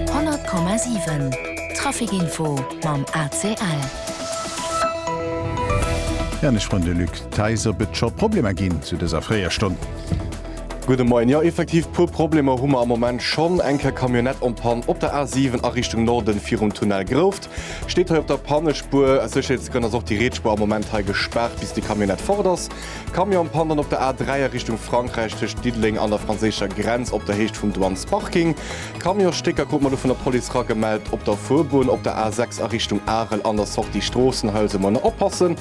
100,7 Trafic Info mam ACL. Ja an ech froen de Luc Theis, ob et scho Problemer ginn zu dëser fréier Stonn. Gudde Moien. Jo, effektiv puer Problemer hu mer am Moment schonn. Eng Kéier Camionnette en Panne op der A7 a Richtung Norden virum Tunnel Grouft. Steet hei op der Pannespuer. Aus Sécherheetsgrënn ass och déi Rietspuer am Moment hei gespaart, bis déi Camionnette fort ass. Camion pannt op der A3 a Richtung Frankräich tëscht Diddeleng an der franséischer Grenz op der Héicht vum Douanesparking. Camionsstécker krut mer elo vun der Police ragemellt op der Fuerbunn op der A6 a Richtung Arel an der Sortie Stroossenhuis. Elo manner oppassen.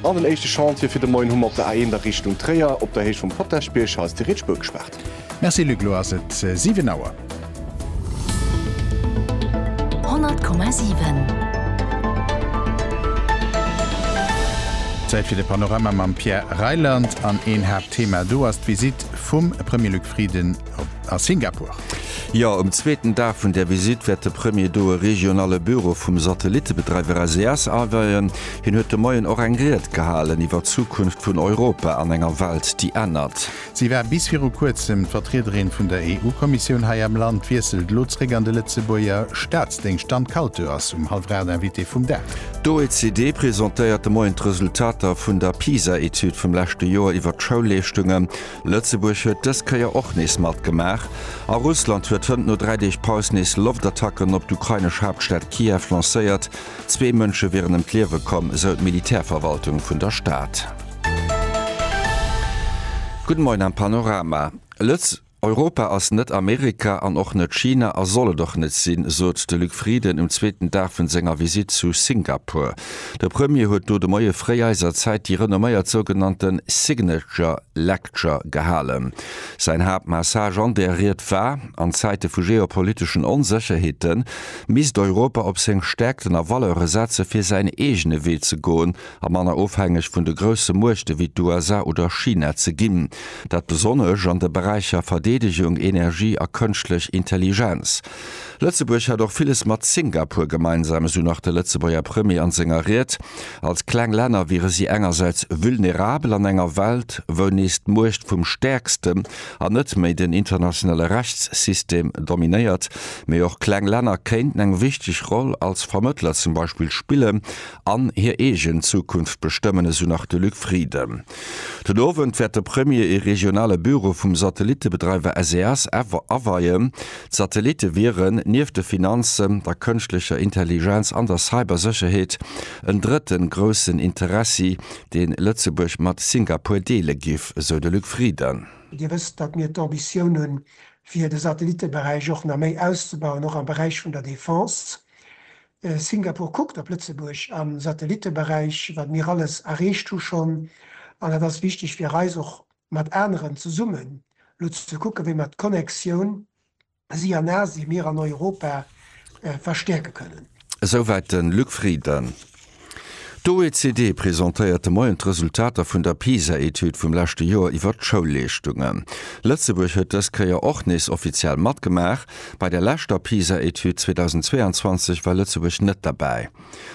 An den éischte Chantier fir de Moien hu mer op der A1 a Richtung Tréier op der Héicht vum Potaschbierg. Hei ass déi rietsch Buerg gespaart. Merci Luc, lo ass et 7 Auer. 100,7. Zäit fir de Panorama mam Pierre Reyland an een Haaptthema do ass d'Visitt vum Premier Luc Frieden a Singapur. Jo, um zweeten Dag vun där Visitt wäert de Premier do e regionale Büro vum Satellittebedreiwer SES aweien. Hien huet de Moien och eng Ried gehalen iwwer d'Zukunft vun Europa an enger Welt, déi ännert. Si war bis viru kuerzem d'Vertriederin vun der EU-Kommissioun hei am Land, wiesselt elo zréck an de Lëtzebuerger Staatsdéngscht an d'Calteu ass um hallwer 8 Invitée vum Dag. D'OECD presentéiert de Moien d'Resultater vun der PISA-Etüd vum leschte Joer iwwer d'Schoulleeschtunge. Lëtzebuerg huet dës Kéier och nees matgemaach. A Russland huet hënt no dräi Deeg Paus nees Loftattacken op d'ukrainesch Haaptstad Kiew lancéiert. Zwee Mënsche wieren ëm d'Liewe komm, esou d'Militärverwaltung vun der Stad. Gudde Moien am Panorama. Lëtz. Europa ass net Amerika an och net China a soll et och net sinn, sot de Luc Frieden um zweeten Dag vun senger Visitt zu Singapur. De Premier huet do de Moie fréi eiser Zäit déi renomméiert sougenannte Signature Lecture gehalen. Säin Haaptmessage an där Ried war, An Zäite vu geopoliteschen Onsécherheeten, misst Europa op seng Stäerkten a Valeure setze fir säin eegene Wee ze goen a manner ofhängeg vun de grousse Muechte wéi d'USA oder China ze ginn. Dat besonnesch an de Beräicher Verdeedegung, Energie a Kënschtlech Intelligenz. Lëtzebuerg hätt och villes mat Singapur gemeinsam, esou nach de Lëtzebuerger Premier an senger Ried. Als kleng Länner wiere si engersäits vulnerabel an enger Welt, wou nees d'Muecht vum Stäerkste an net méi den internationale Rechtssystem dominéiert, mee och kleng Länner kéinten eng wichteg Roll als Vermëttler zum Beispill spillen an hir eegen Zukunft bestëmmen, esou nach de Luc Frieden. Den Owend wäert de Premier ee regionale Büro vum Satellittebedreiwer SES aweien. D'Satellitte wieren, nieft de Finanzen, der kënschtlecher Intelligenz an der Cybersécherheet, en drëtten groussen Interessi dee Lëtzebuerg mat Singapur deele giff, esou de Luc Frieden. Dir wësst, datt mir d'Ambitioun hunn, fir de Satellitteberäich och nach méi auszebauen, och am Beräich vun der Defense. Singapur kuckt op Lëtzebuerg am Satellitteberäich, wat mir alles erreecht hu schonn. An et ass wichteg fir eis, och mat aneren zesummen elo ze kucken, wéi mer d'Connectioun si an Asien, mir an Europa verstäerke kënnen. Esouwäit de Luc Frieden. D'OECD presentéiert de Moien d'Resultater vun der PISA-Etüd vum leschte Joer iwwert d'Schoulleeschtungen. Lëtzebuerg huet dës Kéier och nees offiziell matgemaach. Bei der leschter PISA-Etüd 2022 war Lëtzebuerg net derbäi.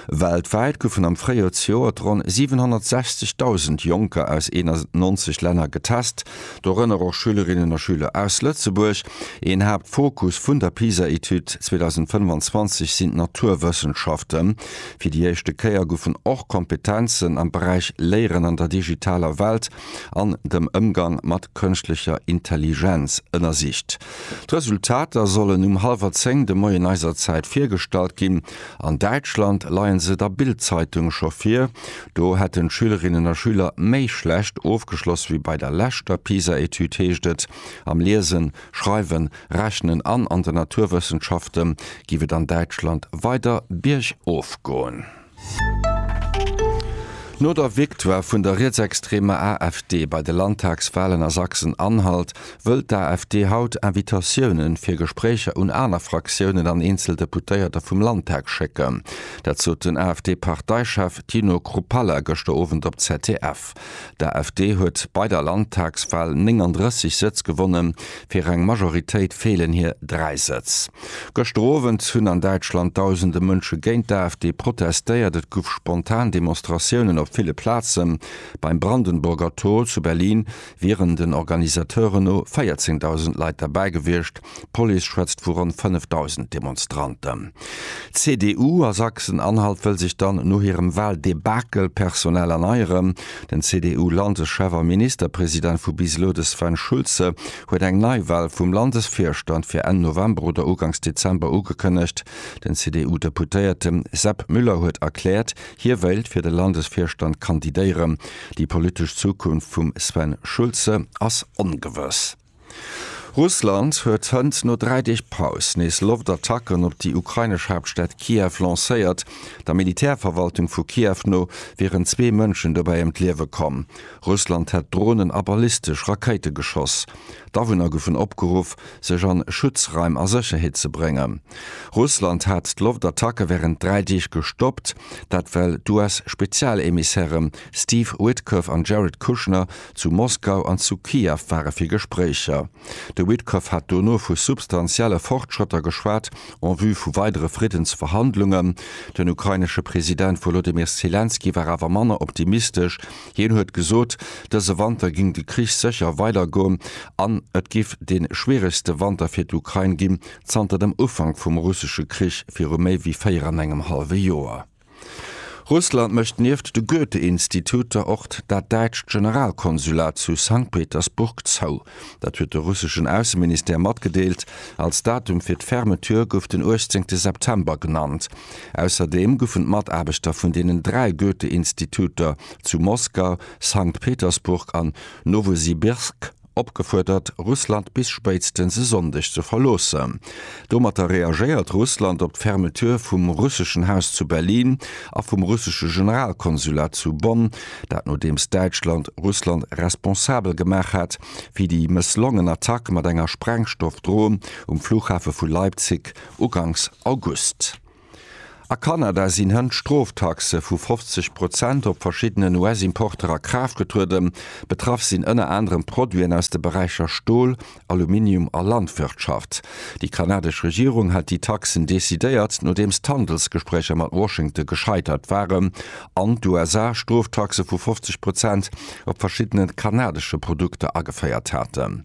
Weltwäit goufen am Fréijoer zejoert ronn 760.000 Jonker aus 91 Länner getest, dorënner och Schülerinnen a Schüler aus Lëtzebuerg. Een Haaptfokus vun der PISA-Etüd 2025 sinn d'Naturwëssenschaften. Fir déi éischte Kéier goufen och Kompetenzen am Beräich Léieren an der digitaler Welt an dem Ëmgang mat kënschtlecher Intelligenz ënnersicht. D'Resultater sollen um hallwer zéng de Moien eiser Zäit virgestallt ginn. An Däitschland leien se der Bild-Zeitung scho vir. Do hätten d'Schülerinnen a Schüler méi schlecht ofgeschloss wéi bei der leschter PISA-Etüd, heescht et. Am Liesen, Schreiwen, Rechnen an an den Naturwëssenschafte géif et an Däitschland weider biergof goen. No der Victoire vun der rietsextreemer AfD bei de Landtagswalen a Sachsen-Anhalt Wëll d'AfD haut Invitatiounen fir Gespréicher un aner Fraktiounen an eenzel Deputéierter vum Landtag schécken? Dat sot den AfD-Parteichef Tino Kruppalla gëschter Owend op ZDF. D'AfD huet bei der Landtagswal 39 Sëtz gewonnen, fir eng Majoritéit feelen hir dräi Sëtz. Gëschter Owend hunn an Däitschland dausende Mënsche géint d'AfD protestéiert. Et gouf spontan Demonstratiounen op ville Plazen. Beim Brandenburger Tor zu Berlin wieren den Organisateuren no 14.000 Leit derbäi gewiescht, d'Police schwätzt vu ronn 5.000 Demonstranten. D'CDU a Sachsen-Anhalt wëll sech dann no hirem Wahldebakel personell erneieren. Den CDU-Landeschef a Ministerpresident vu bis elo, de Sven Schulze, huet eng Neiwal vum Landesvirstand fir Enn November oder Uganks Dezember ugekënnegt. Den CDU-Deputéierte Sepp Müller huet erkläert, hie wéilt fir de Landesvirstand kandidéieren. Déi politesch Zukunft vum Sven Schulze ass ongewëss. Russland huet hënt no dräi Deeg Paus nees Loftattacken op déi ukrainesch Haaptstad Kiew lancéiert. Der Militärverwaltung vu Kiew no wieren zwee Mënschen dobäi ëm d'Liewe komm. Russland hätt Dronen a ballistesch Rakéite geschoss. D'Awunner goufen opgeruff, sech an Schutzraim a Sécherheet ze bréngen. Russland hat d'Loftattacke wärend dräi Deeg gestoppt. Dat well d'US-Spezialemissäre Steve Witkoff an Jared Kushner zu Moskau an zu Kiew ware fir Gespréicher. De Witkoff hat dono vu substantielle Fortschrëtter geschwat en vue vu weidere Friddensverhandlungen. Den ukrainesche President Wolodymyr Selenskyj war awer manner optimistesch. Hien huet gesot, dëse Wanter géing de Krich sécher weidergoen an et géif dee schwieregste Wanter fir d'Ukrain ginn, zanter dem Ufank vum russesche Krich viru méi wéi véier an engem hallwe Joer. Russland mécht nieft de Goethe-Instituter och dat däitscht Generalkonsulat zu Sankt Petersburg zou. Dat huet de russeschen Ausseministère matgedeelt. Als Datum fir d'Fermeture gouf den 18 September genannt. Ausserdeem goufen d'Mataarbechter vun deenen dräi Goethe-Instituter zu Moskau, Sankt Petersburg an Nowosibirsk opgefuerdert, Russland bis spéitstens e Sonndeg ze verloossen. Domatter reagéiert Russland op d'Fermeture vum russeschen Haus zu Berlin a vum russesche Generalkonsulat zu Bonn, dat nodeems Däitschland Russland responsabel gemaach hat fir déi mësslongen Attack mat enger Sprengstoffdron um Flughafe vu Leipzig uganks August. A Kanada sinn hënt Stroftaxe vu 50 Prozent op verschiddenen US-Importer a Kraaft getrueden. Betraff sinn ënner anerem Produiten aus de Beräicher Stol, Aluminium a Landwirtschaft. Déi kanadesch Regierung hat déi Taxen decidéiert, nodeems d'Handelsgespréicher mat Washington gescheitert waren an d'USA Stroftaxe vu 50 Prozent op verschiddene kanadesche Produkter ageféiert haten.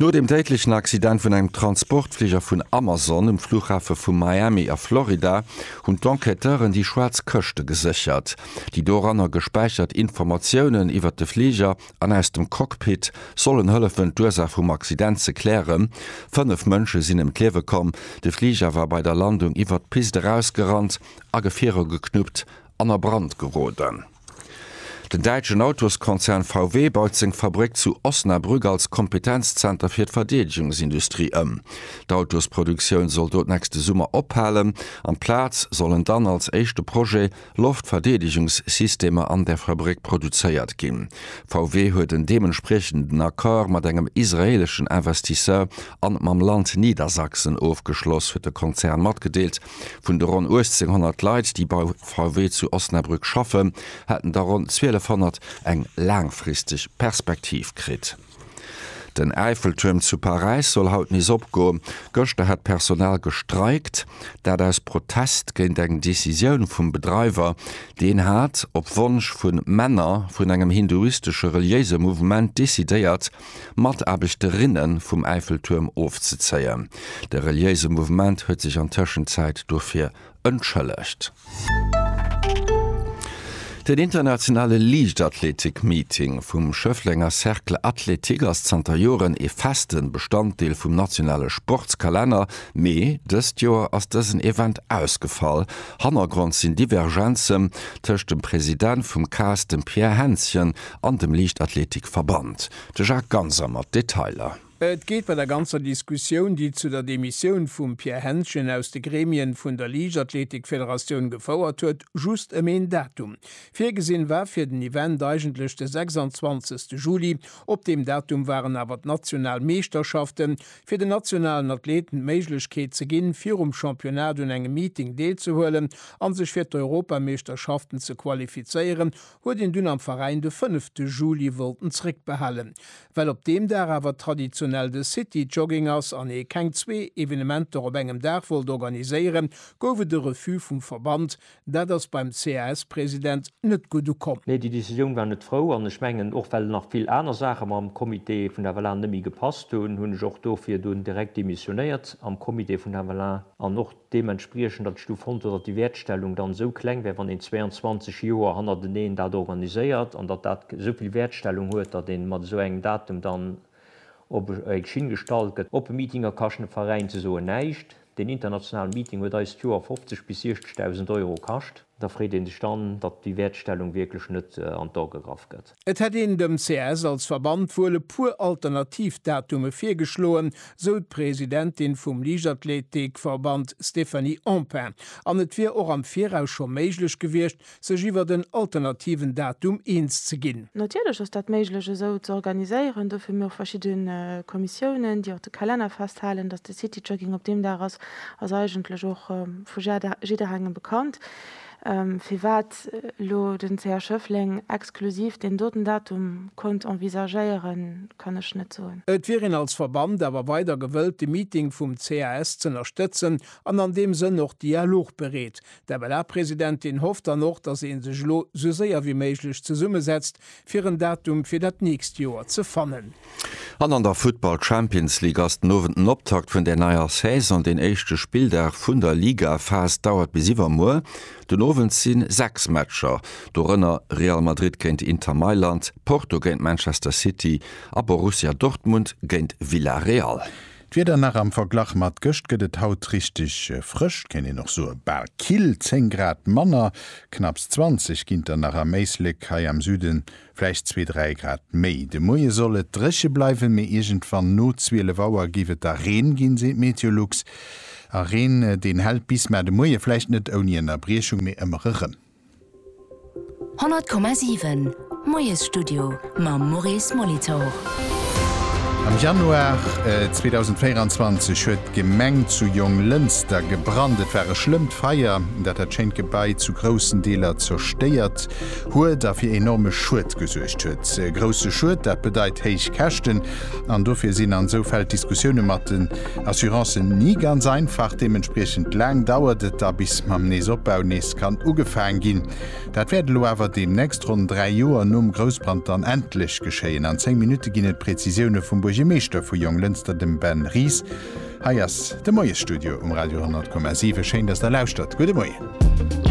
No dem déidlechen Accident vun engem Transportfliger vun Amazon um Fluchhafe vu Miami a Florida hunn d'Enquêteuren déi schwaarz Këschte geséchert. Déi doranner gespäichert Informatiounen iwwert de Fliger an aus dem Cockpit sollen hëllefen, d'Ursaach vum Accident ze klären. Fënnef Mënsche sinn ëm d'Liewe komm. De Fliger war bei der Landung iwwert d'Pist erausgerannt, a Gefierer geknuppt an a Brand geroden. Den däitschen Autoskonzern VW baut seng Fabréck zu Osnabrück als Kompetenzzenter fir d'Verdeedegungsindustrie ëm. D'Autosproduktioun soll do d'nächste Summer ophalen. An d'Plaz sollen dann, als éischte Projet, Loftverdeedegungssystemer an der Fabréck produzéiert ginn. VW huet en deementspriechenden Accord mat engem israeeleschen Investisseur an mam Land Niedersachsen ofgeschloss, huet de Konzern matgedeelt. Vun de ronn 1800 Leit, déi bei VW zu Osnabrück schaffen, hätten der ronn 1200 eng laangfristeg Perspektiv kritt. Den Äifeltuerm zu Paräis soll haut nees opgoen. Gëschter hätt d'Personal gestreikt, dat aus Protest géint eng Decisioun vum Bedreiwer. Deen hat, op Wonsch vu Männer vun engem hinduistesche reliéise Mouvement, decidéiert, Mataarbechterinnen vum Äifeltuerm ofzezéien. De reliéise Mouvement huet sech an Tëschenzäit dofir entschëllegt. Den internationale Liichtathletik-Meeting vum Schëfflenger Cercle Athlétique ass zanter Joren ee festen Bestanddeel vum nationale Sportskalenner, mee dëst Joer ass dësen Event ausgefall. Hannergrond sinn Divergenzen tëscht dem President vum cas, dem Pierre Hänschen, an dem Liichtathletikverband. De Jacques Ganser mat Detailer. Et geet bei der ganzer Diskussioun, déi zu der Demissioun vum Pierre Hentgen aus de Gremien vun der Liichtathletikfederatioun gefouert huet, just ëm een Datum. Virgesinn war fir den Event eigentlech de 26 Juli. Op deem Datum waren awer d'national Meeschterschaften, fir den nationalen Athleten d'Méiglechkeet ze ginn, virum Championnat un engem Meeting deelzehuelen an sech fir d'Europameeschterschaften ze qualifizéieren, huet een dunn am Veräin de fënnefte Juli wollten zréckbehalen. Well op deem Dag awer traditionell de City Jogging ass an ee keng zwee Evenementer op engem Dag wollt organiséieren, gouf et e Refus vum Verband. Dat ass beim CAS-President net gutt ukomm. Nee, déi Decisioun war net frou an ech mengen och well nach vill aner Saache mam Comité vun der FLA net méi gepasst hunn, hunn ech och dofir dunn direkt demissionéiert am Comité vun der FLA an och, Deementspriechend ass du fonnt huet, datt déi Wäertstellung dann esou kleng wär, wann een 22 Joer hannerteneen dat organiséiert, an datt dat esou vill Wäertstellung huet, datt ee mat esou engem Datum dann op eng Schinn gestallt gëtt. Oppe Meetinger kaschten de Veräin ze soen näischt. Deen internationalen Meeting huet eis d'Joer 50 bis 60.000 Euro kascht. Da freet ee sech dann, datt déi Wäertstellung wierklech net an d'A gegraff gëtt. Et hätt een dem CS als Verband wuel e puer alternativ Datume virgeschloen, sou d'Presidentin vum Liichtathleetik-Verband Stéphanie Empain, an et wier och am Viraus scho méiglech gewiescht, sech iwwert en alternativen Datum eens ze ginn. Natierlech ass dat méiglech esou ze organiséieren. Dofir hu mir och verschidde Kommissiounen, déi och de Kalenner festhalen. Datt de City Jogging op deem Dag ass, ass eigentlech och vu jidderengem bekannt. Firwat elo den CH Schëffleng exklusiv deen doten Datum konnt envisagéieren, kann ech net soen. Et wier een als Verband awer weider gewëllt, de Meeting vum CAS z'ënnerstëtzen an an deem Sënn och dialogbereet. D'MLA-Presidentin hofft dann och, datt ee sech elo esou séier wéi méiglech zesummesetzt, fir en Datum fir dat nächst Joer ze fannen. An an der Futtball Champions League ass den Owend den Optakt vun der neier Saison. Deen éischte Spilldag vun der Ligaphas dauert bis iwwermuer. Den Owend si 6 Matcher, dorënner Real Madrid géint Inter Mailand, Porto géint Manchester City a Borussia Dortmund géint Villarreal. D'Wieder nach, am Verglach mat gëscht gëtt et haut richteg frësch, kéint een och soe bal kill, 10 Grad manner, knapps 20 ginter nach am Éislek, hei am Süde vläicht zwee, dräi Grad méi. De Moie soll et dréche bleiwen, mee iergendwann no 12 Auer géif et da Reen ginn, seet Meteolux. A Reen, deen hält bis, mä de Moie vläicht net ouni Ënnerbriechung, mee ëmmer erëm. 100,7 Moiesstudio mam Maurice Molitor. Am Januar 2024 huet d'Gemeng zu Jonglënster gebrannt. Et war e schlëmmt Feier, dat dat schéint Gebai zu groussen Deeler zerstéiert huet a fir enorme Schued gesuergt huet. Grousse Schued, dat bedeit héich Käschten an dofir sinn an esou Fäll d'Diskussioune mat den Assurance sinn ni ganz einfach, deementspriechend laang dauert et da bis mam Neesopbau nees kann ugefaang ginn. Dat wäert elo awer deemnächst, ronn 3 Joer nom Groussbrand, dann endlech geschéien. An 10 Minutte ginn et d'Prezisioune vum Buergermeeschter vu Jonglënster, dem Ben Ries. Hei ass de Moiesstudio um Radio 100,7. Schéin, dass Der lauschtert. Gudde Moien.